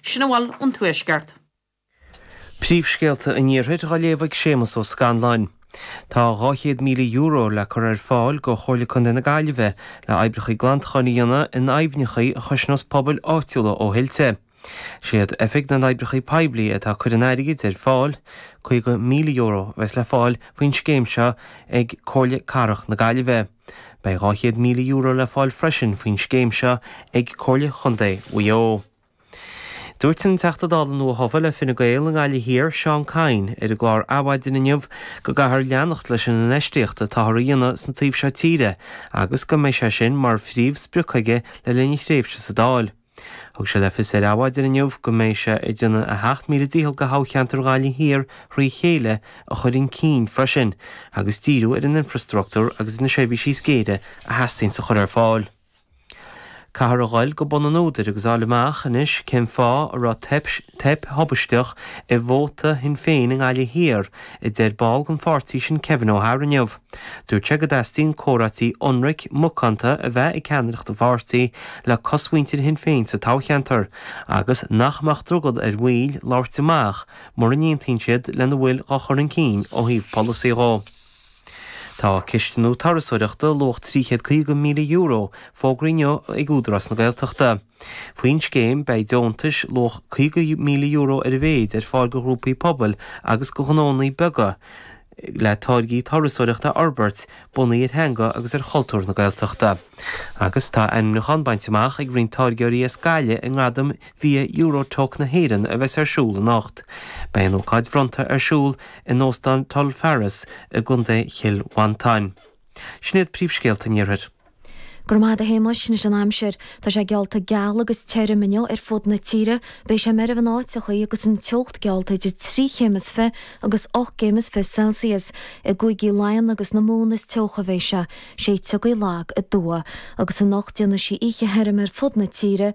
Sin a bhfuil ón Tuaisceart. Príomhscéalta an Iarthair dhá léamh ag Séamus Ó Scanláin. Tá €200,000 le cur ar fáil go Chomhairle Contae na Gaillimhe le oibreacha glantacháin a dhéanamh in aibhneacha a chosnós pobail áitiúla ó thuilte. Siad Oifig na nOibreacha Poiblí atá cur an airgid ar fáil. €50,000 a bheas le fáil faoin scéim seo ag Comhairle Cathrach na Gaillimhe. Beidh €200,000 le fáil freisin faoin scéim seo ag Comhairle Chontae Mhaigh Eo. Dúirt an Teachta Dála nua-thofa le Fine Gael i nGaillimh Thiar, Seán Kyne, ar an gclár Adhmhaidin inniu go gcaithfear leanacht leis an infheistíocht atáthar a dhéanamh sa taobh seo tíre agus go mbeidh sé sin mar phríomhsprioc aige le linn a thréimhse sa Dáil. Thug sé le fios ar Adhmhaidin inniu go mbeidh sé ag déanamh a sheacht míle dícheall go thoghcheantar Ghaillimh Thiar trí chéile a chur in cinn freisin agus díriú ar an infrastruchtúr agus na seirbhísí is géire a theastaíonns a chur ar fáil. Caithfear a ghoil go bun an údair agus a fháil amach anois cén fáth a raibh teip thubaisteach ar vótaí Shinn Féin i nGaillimh Thiar, a deir ball gon pháirtí sin Kevin O'Hara inniu. Dúirt sé go dteastaíonn comhráití ionraic, macánta a bheith ag ceannaireacht an pháirtí le cosmhuintir Shinn Féin sa toghcheantar agus nach mbeadh drogall ar bhaill labhairt amach mura n-aontaíonn siad lena bhfuil dhá chur in cinn ó thaobh polasaí dhó. Tá cistiú turasóireachta, luach €350,000, fógraithe inniu ag Údarás na Gaeltachta. Faoin scéim, beidh deontais, luach €50,000 ar a mhéid, ar fáil go ghrúpaí pobail agus go ghnónnaí beaga le táirgí turasóireachta a fhorbairt, bunaithe ar theanga agus ar chultúr na Gaeltachta. Agus tá ainmniúchán bainte amach ag roinnt táirgeoirí as Gaillimh i nGradaim Bhia Euro-Toques na hÉireann a bheas ar siúl anocht. Beidh an ócáid bhronnta ar siúl in Óstán Tulfarris i gContae Chill Mhantáin. Sin iad príomhscéalta an iarthair. Go raibh maith agat a Shéamuis, anois an aimsir. Tá sé geallta geal agus teirm inniu ar fud na tíre. Beidh sé meirbh in áiteachaí agus an teocht geallta idir trí chéim is fiche agus ocht gcéim is fiche Celsius. I gCúigí Laighean agus na Mumhan is teocha a bheas sé. Séideadh gaoithe lag aduaidh. Agus anocht déanfaidh sí oíche theirm ar fud na tíre.